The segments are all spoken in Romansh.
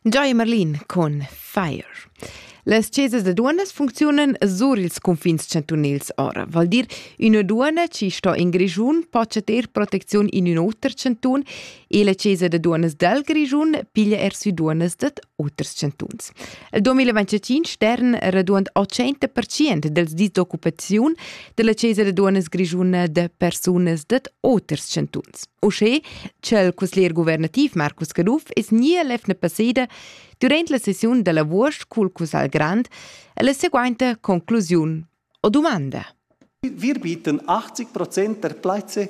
Joy Merlin con Fire. Las chesas da duonas funcziunan sur ils cunfins chantunils ora, vol dir üna duonna chi sto in Grischun po ter protecziun in ün oter chantun e la chesa da duonas dal Grischun piglia er sü duonas dad oters chantuns. Il 2025 stern raduond 80% dels disoccupaziun della Cesar e duonas grischuna de persunas dad oters chantuns. Uschè ch'el cusglier guvernativ Marcus Caduff es nia lefna passeda durant la sessiun della Vuorst cul Cussal Grand e la seguainta conclusiun o domanda. Wir bieten 80 Prozent der Plätze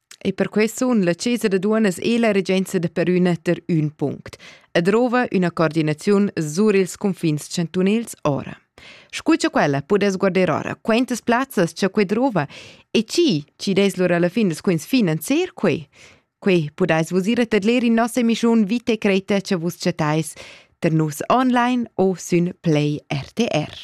E per quei sun la Chesa da duonas e la regenza da Perüna ter ün punct e drova üna coordinaziun sur ils cunfins chantunils ora. Scu cha quella pudess guarder ora, quantas plazzas cha quei drova e chi chi des lura alla fin des quins finanzier quei. Quei pudais vus ir a tedler in nossa emissiun Vite Creta che vus chattais ter nus online o sün Play RTR.